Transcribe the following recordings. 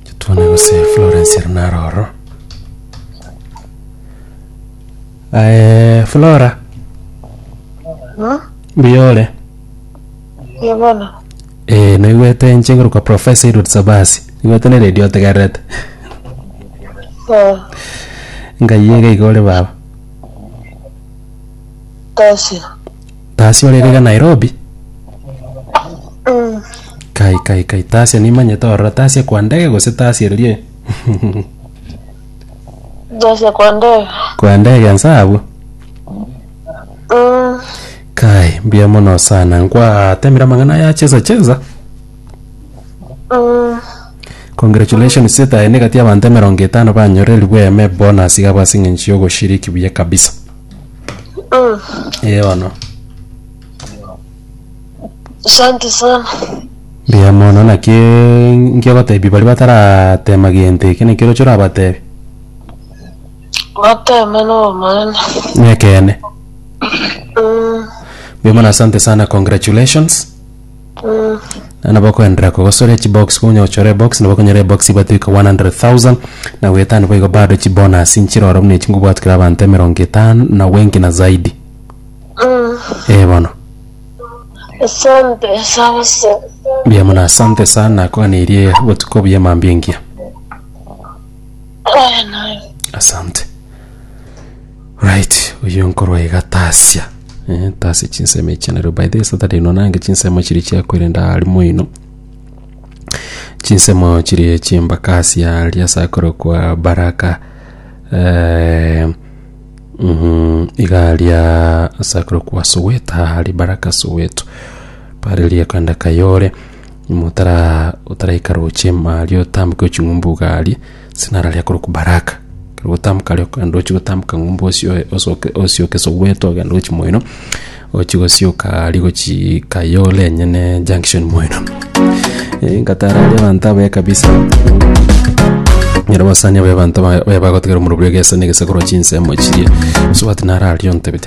Titwane gose Florence ere naro ororo. Eh, Flora, Huh? mbuya ore? Ye bono. Eh, naigwete inche ngoruka Professor Edward Sabasi. Naigwete ne radio otegererete. Eh, Ngai yega igore baba. tosia. Tasi orerega Nairobi? Mm. Kai kai kai Tasia nimanyete orora Tasia kwa ndege gose Tasia ririe Jose kwa ndege. kwa ndege nsabu. Mm. Kai mbuya mono sana nkwatemire amang'ana ya cheza cheza. Mm. Congratulations setae negati abantu emerongo etano banyorerigwe eme bonus iga basing'enchi ogoshiriki buya kabisa. Mm. Eh, bono. Asante sana. Mbuya mono naki nkiabatebi bari bataratema gento eke naki roche orabatebi Bateme no maana. nekene Mm. mbuya mono asante sana congratulations Naende nabo okoenderea kogosore chibox konya ochore ebox nabo okonyora ebox ebwate goika 100,000 na goetano boigo bado chibonus nchire oro buna echi ngobwatukera abanto emerongo etano na wengi na zaidi. Ee bono. Asante sana sana. Mbuya mono asante sana nakoganeirie botuko buya mambia engiya. asante right oyo nkorwa iga tasia eh, tasia chinsemo echi nario by the way saturday ino nange chinsemo chiri chiakoirenda ari moino chinsemo chiri chimbaka asia ari ase akorokwa baraka eh, mhm, iga aria ase akorokwa soweta ari baraka soweto pare riakanda kayore Motara otaraika roche maria otambuke ochi ng'umbu gari sinara ria korokwa baraka ekero gotambuka ria okogenda ochi gotambuka ng'umbu osioe osoke osioke sogwete ogende gochi moino ochi gosioka gari gochii kayole enyene junction moino ngatara aria abanto abaye kabisa nyarabasani abaye abanto baye baye bagotegerera omorobio egese na egesakoro chinsemo chiria osubati nararie ontebete.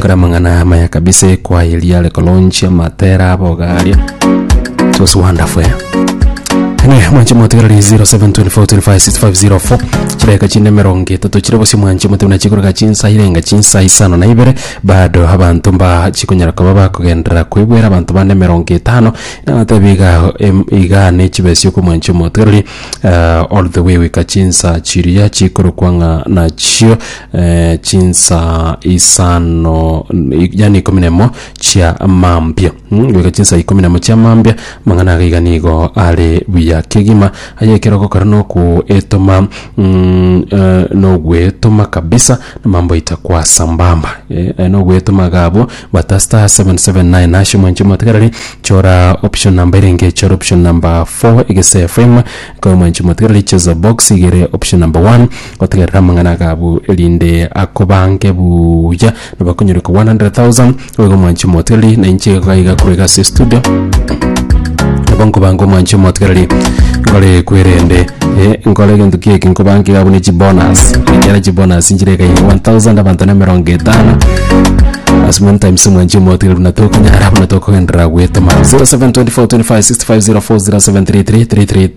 Kore amang'ana amaya kabisa ekwaya riare kolonchia matera aboga aria. It was wonderful. eh? Anyway, mwanche motigara ri 0724256504 chireka chine mirongo etatu chire bosi mwanche motiguna chikoroga chinsa irenga chinsa isano na ibere bado abanto mba chikonyara koba bakogenderera kwebwera abanto bane mirongo etano nabatebi iga em- iga ne chibesi oko mwanche motigarari uh, all the way wika chinsa chiria chikorokwa ng'a nachio eh, chinsa isano yani ikomi nemo chia mambia Mm, goika chinsa ikomi nemo chia mambia mang'ana agaiga nigo are buya kegima aye ekero gokora nokuetoma mm, eh, noguetoma kabisa namambo aita kwa sambamba Eh, eh, noguetoma gabo bata star 779 nashe mwanche motigarari chora option namba erenge chora option namba 4 egese fm kwa mwanche motigarari cheza box igere option namba 1 Gotegerera amang'ana ake abwo, erinde akobange buya, nabo akonyore kobua 100,000, oiga omwanchi omotigereri, na inche iga iga korega ase estudio, nabo nkobange omwanchi omotigereri, nkore kwerende, eh, nkore egento kie eke nkobange iga buna chibonus, ekiagera chibonus nchire iga iga 1,000, abanto na emerongo etano, as many times omwanchi omotigereri buna tokonyara, buna tokogenderera goetema. 0724256504, 073333.